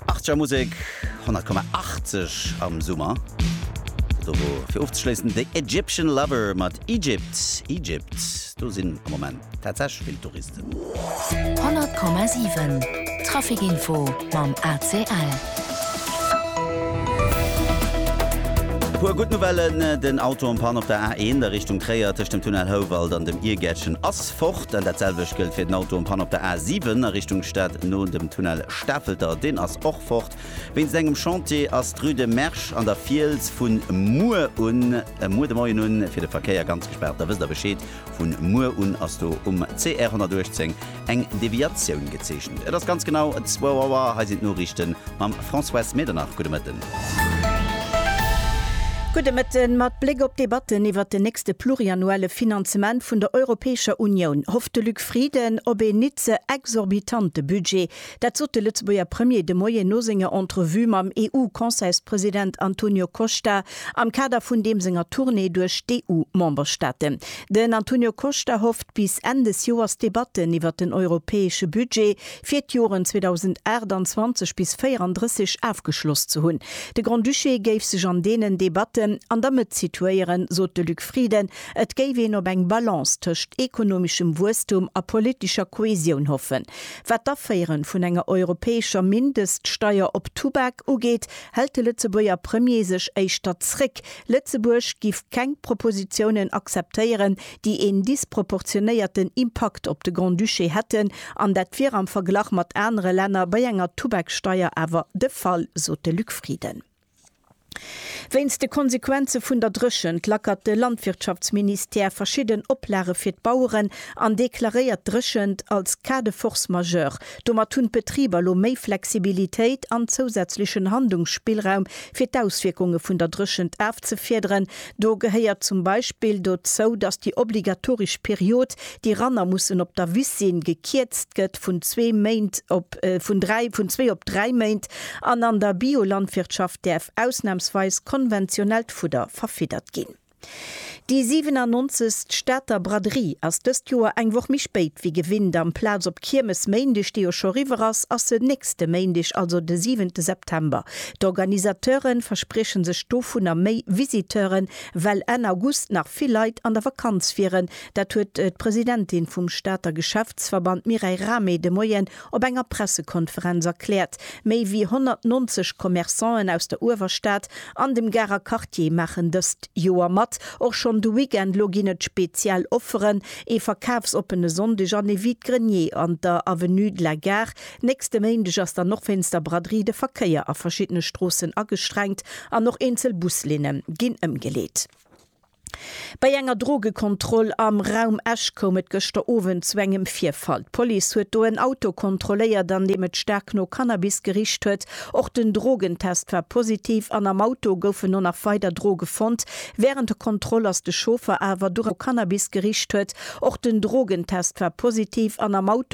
Achtzeger Musek 100,80 am Summer. Do wor fir ofzeschléissen The Egyptian Lover mat Egypt, Egypt. Do sinn am Moment tatsächlech vill Touristen. 100,7 Trafic Info mam ACL. E puer gutt Nouvellen, Den Auto en Panne op der A1 a Richtung Tréier tëscht dem Tunnel Houwald an dem Irgäertchen ass Fort. Dat selwecht gëllt fir den Auto en panne op der A7 a Richtung Stad no dem Tunnel Stafelter. Deen ass och fort. Wéinst engem Chantier ass d'Rue de Mersch an der Fiels vu muer un, muer de Moien un, fir de Verkéier ganz gespaart. Da wësst der Bescheed. Vu muer un ass do um CR 118 eng Deviatioun gezeechent. Et ass ganz genau 2 Auer. Hei sinn d'Noriichte mam Françoise Medernach. Gudde Mëtten. Gudde Mëtten. Mat Bléck op d'Debatten iwwert den nächste pluriannuelle Finanzement vun der Europäescher Unioun hofft de Luc Frieden op een nit ze exorbitante Budget. Dat sot de Lëtzebuerger Premier de Moien no senger Entrevue mam EU-Conseilspresident Antonio Costa am Kader vun deem senger Tournée duerch d'EU-Memberstaaten. Den Antonio Costa hofft bis Enn des Joers d'Debatten iwwert den europäesche Budget fir d'Joren 2028 bis 34 ofgeschloss ze hunn. De Grand-Duché géif sech an deenen Debatten an der Mëtt situéieren, sot de Luc Frieden. Et géif een op eng Balance tëscht ekonomeschem Wuesstum a politescher Kohäsioun hoffen. Wat d'Aféiere vun enger europäescher Mindeststeier op Tubak ugeet, hält de Lëtzebuerger Premier sech éischter zréck. Lëtzebuerg giff keng Propositiounen akzeptéieren, déi een disproportionéierten Impakt op de Grand-Duché hätten, an dat wier am Verglach mat anere Länner bei enger Tubaksteier awer de Fall, sot de Luc Frieden. Wéinst de Konsequenze vun der Dréchent lackert de Landwirtschaftsministère verschidden Oplage fir d'Baueren an deklaréiert d'Dréchent als Cas de force majeure. Domat hunn d'Betriber elo méi Flexibilitéit an zousätzlechen Handlungsspillraum, fir d'Auswierkunge vun der Dréchent afzefiederen. Do gehéiert zum Beispill dozou, datt déi obligatoresch Period, déi Ranner mussen op der Wiss sinn, gekierzt gëtt vun zwee Méint op vun dräi, vun zwee op dräi Méint, an an der Biolandwirtschaft däerf ausnamsweis konventionellt Fudder verfiddert ginn. Déi 97. Stater Braderie ass dëst Joer eng Woch méi spéit wéi gewinnt. Amplaz op Kiermes Méindeg, dee jo scho riwwer ass, ass se nächste Méindeg, also de siwente September, D'Organisateure versprieche sech dovunner méi Visiteuren, well Enn August nach vill Leit an der Vakanz wieren. Dat huet d'Presidentin vum Stater Geschäftsverband Mireille Rahmé de Moien op enger Pressekonferenz erkläert. Méi wéi 190 Commerçanten aus der Uewerstad an dem Garer Quartier maachen dëst Joer mat. Och schonn de Weekend lo ginn et speziell Offeren, ee verkafsoppene Sonndeg an ee Vide-grenier an der Avenue de la Gare. Nächste Méindeg ass dann och wéinst der Braderie de Verkéier a verschiddene Stroossen agestrengt an och eenzel Buslinne ginn ëmgeleet. Bei enger Drogekontroll am Raum Esch koum et gëschter Owend zu engem Virfall. D'Police huet do en Auto kontrolléiert, an deem et staark no Cannabis gericht huet. Och den Drogentest war positiv an am Auto goufen no nach weider Droge fonnt. Wärend der Kontroll ass de Chauffer awer duerch no Cannabis gericht huet. Och den Drogentest war positiv an am Auto.